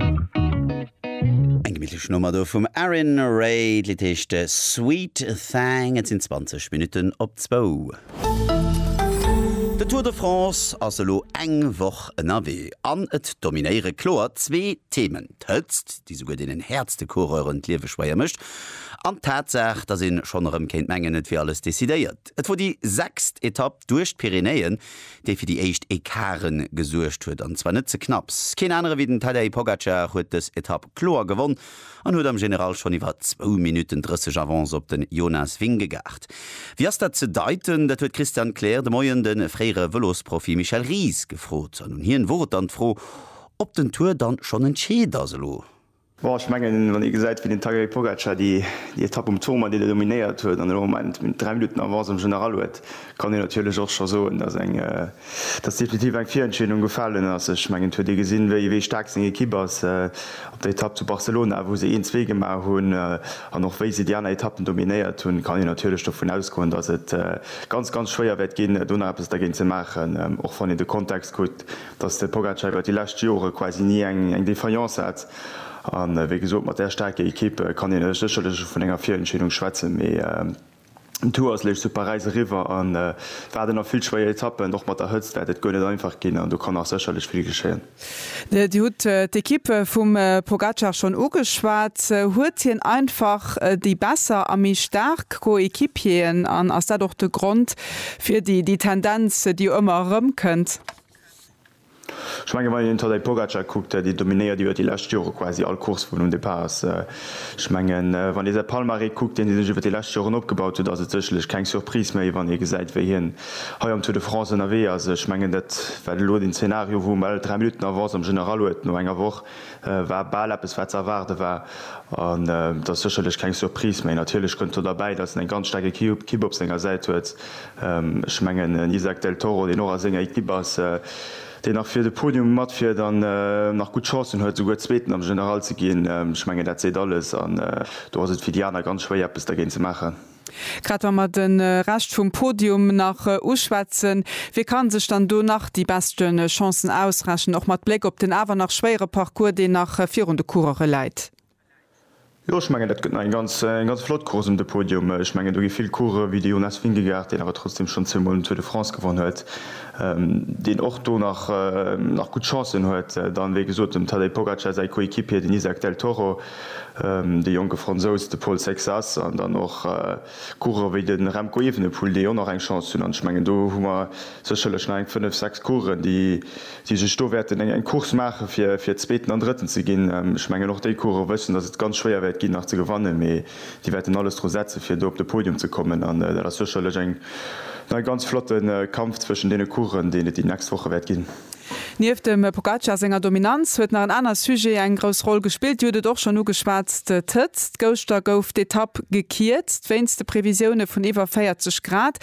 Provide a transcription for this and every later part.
Eng gemittlech Nummer do vum Arin Ray. D'Lidd heescht Sweet Thang. Et sinn 20 Minutten op zwou. De Tour de France ass elo eng Woch ënnerwee an et dominéiere kloer zwee Themen, d'Hëtzt, déi souguer deenen häertste Coureuren d'Liewe schwéier mécht, an d'Tatsaach, datt ee schonn erëm kéint mengen, et wier alles decidéiert. Et wor déi sechst Etapp duerch d'Pyrenäen, dee fir déi éischt Ecarten gesuergt huet, an zwar net ze knapps. Keen anere wéi den Tadej Pogacar huet dës Etapp kloer gewonn an huet am General schonn iwwer zwou Minutten 30 Avance op den Jonas Vingegaard. Wéi ass dat ze deiten? Dat huet d'Christiane Kleer de Moien de fréiere Vëlosprofi Michel Ries gefrot. An un hien wor et dann d'Fro, ob den Tour dann schonn entscheet ass elo. Bon, ech mengen, wann ee gesäit, wéi den Tadej Pogacar déi Etapp um Tourmalet déi do dominéiert huet an elo am Moment méi wéi 3 Minutten Avance um General huet, kann een natierlech och scho soen, dass eng, dass definitiv eng Virentscheedung gefalen ass. Ech mengen, et huet ee gesinn, wéi, wéi staark seng Ekipp ass op der Etapp zu Barcelona, wou se een, zwee gemaach hunn an och wéi se déi aner Etappen dominéiert hunn, kann een natierlech dovun ausgoen, dass et ganz, ganz schwéier wäert ginn, do nach eppes dergéint ze maachen, och wann een de Kontext kuckt, datt de Pogacar iwwer déi lescht Jore quasi ni eng Defaillance hat an wéi gesot mat där staarker Ekipp kann een sécherlech vun enger Virentscheedung schwätzen, mee den Tour ass lech zu Paräis eriwwer a waarden nach vill schwéier Etappen. Och mat der Hëtzt wäert et guer net einfach ginn an do kann nach sécherlech vill geschéien. Dir hutt d'Ekipp vum Pogacar schonn ugeschwat. Huet hien einfach déi besser a méi staark Coéquipieren an ass dat och de Grond, Fir déi déi Tendenz, déi jo ëmmer erëmkënnt. Ech mengen, wann een den Tadej Pogacar kuckt, déi dominéiert iwwer déi lescht Jore quasi all Course vun um Depart ass. Ech mengen, wann ee säi Palmarès kuckt, deen hie sech iwwer déi lescht Joren opgebaut huet, ass et sécherlech keng Surprise méi, wann ee gesäit, wéi hien hei am Tour de France ënnerwee ass. Ech mengen, dat war elo den Zeenario, wou um Ell dräi Minutten Avance am General huet no enger Woch. war bal eppes wat ze erwaarde war an et ass sécherlech keng Surprise méi. Natierlech kënnt do derbäi, datt en eng ganz staark Equipe op senger Säit huet. Ech mengen en Isaac Del Toro, deen och a senger Equipe ass, deen nach fir de Podium matfiert an nach gutt Chancen huet esouguer Zweeten am General ze ginn, ech mengen dat seet alles an do ass et fir déi aner ganz schwéier eppes dergéint ze maachen. Grad wa mer de Rescht vum Podium nach uschwätzen, wie ka sech dann do nach déi beschte Chancen ausrechnen, och mat Bléck op den awer nach schwéiere Parcours, deen nach virun de Coureuren läit? Jo, ech mengen, dat gëtt nach eng ganz, eng ganz flott Course ëm de Podium. Ech mengen, do gi vill Coureuren, wéi de Jonas Vingegaard, deen awer trotzdeem schonn zweemol den Tour de France gewonnen huet, deen och do nach, nach gutt Chancen huet. Dann, wéi gesot, dem Tadej Pogacar säi Coéquipier, den Izack Del Toro. de jonke Fransous, de Paul Sexas an dann och Coureurer wéi de Remco Evenepoel, déi och nach eng Chance hunn. An ech mengen, do hu mer sécherlech nach eng fënnef, sechs Coureuren, déi sech do wäerten eng Course maachen, fir Zweeten an Drëtten ze ginn. Ech mengen, och déi Coureuren wëssen, datt et ganz schwéier wäert ginn, nach ze gewannen, mee déi wäerten alles dru setzen, fir do op de Podium ze kommen. An dat ass sécherlech eng ganz flotte Kampf zwëschen deene Coureuren, deen et déi nächst Woche wäert ginn. Nieft dem Pogacar senger Dominanz huet nach en aner Sujet eng grouss Roll gespillt. Dir hutt et och schonn ugeschwatzt, d'Hëtzt. Gëschter gouf d'Etapp gekierzt wéinst de Previsioune vun iwwer 40 Grad.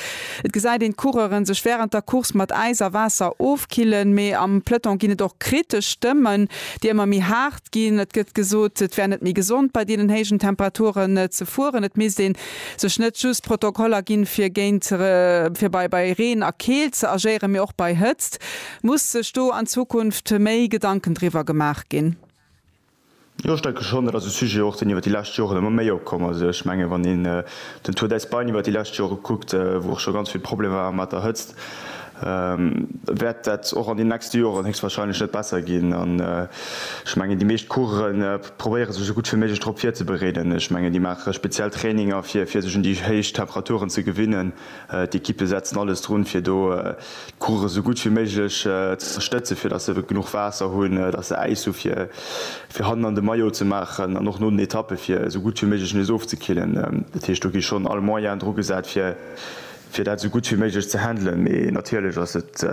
Et gesäit een d'Coureuren sech wärend der Course mat Äis a Waasser ofkillen. Mee am Peloton ginn et och kritesch Stëmmen, déi ëmmer méi haart ginn. Et gëtt gesot, et wär net méi gesond bei deenen héijen Temperaturen ze fueren. Et misst een sech net just Protokoller ginn, fir géint, fir bei, bei Reen a Keelt ze agéieren, mee och bei Hëtzt. Muss sech do an Zukunft méi Gedanken driwwer gemaach ginn? Jo, ech denke schonn. Dat ass e Sujet och, deen iwwer déi lescht Joren ëmmer méi opkomm ass. Ech menge wann een den Tour d'Espagne iwwer déi lescht Jore kuckt, wou och scho ganz vill Problemer waren mat der Hëtzt, wäert dat och an den nächste Joren héchstwahrscheinlech net besser ginn. An ech mengen déi meescht Coursen, probéiere sech esou gutt wéi méiglech drop virzebereeden. Ech mengen déi maache speziell Traininger fir fir sech un déi héich Temperaturen ze gewinnen. D'Ekippe setzen alles drun fir do d'Coureuren esou gutt wéi méiglech ze stëtzen, fir datt se genuch Waasser hunn, datt se Äis hu fir fir hannen an de Maillot ze maachen an och no den Etappe fir esou gutt wéi méiglech nees ofzekillen. Dat heescht do gi schonn all Moyen dru gesat fir fir dat esou gutt wéi méiglech ze handelen, mee natierlech ass et,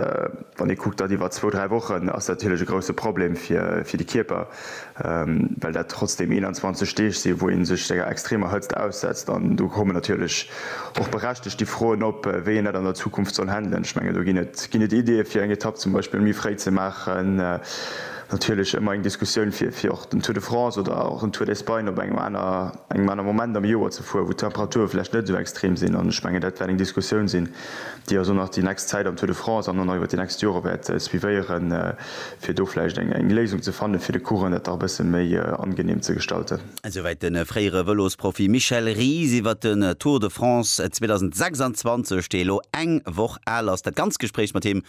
wann ee kuckt, dat iwwer zwou, dräi Wochen, ass dat natierlech e grousse Problem fir de Kierper, well dat trotzdeem 21 Deeg sinn, wou ee sech senger extremer Hëtzt aussetzt. An do kommen natierlech och berechtegt déi Froen op, wéi een dat an der Zukunft soll handelen. Ech mengen, do ginn et, ginn et Ideeë fir eng Etapp zum Beispill méi fréi ze maachen. Natierlech ëmmer eng Diskussioun fir och den Tour de France oder och den Tour d'Espagne op engem aner. engem anere Moment am Joer ze fueren, wou d'Temperature vläicht net esou extrem sinn. An ech mengen, dat wäert eng Diskussioun sinn, déi eis och nach déi nächst Zäit am Tour de France an och nach iwwert déi nächst Jore wäert suivéieren, fir do vläicht eng Léisung ze fannen, fir de Coureuren dat nach e bësse méi angeneem ze gestalten. Esouwäit de fréiere Vëlosprofi Michel Ries iwwert den Tour de France 2026, dee elo eng Woch al ass. Dat ganzt Gespréich mat him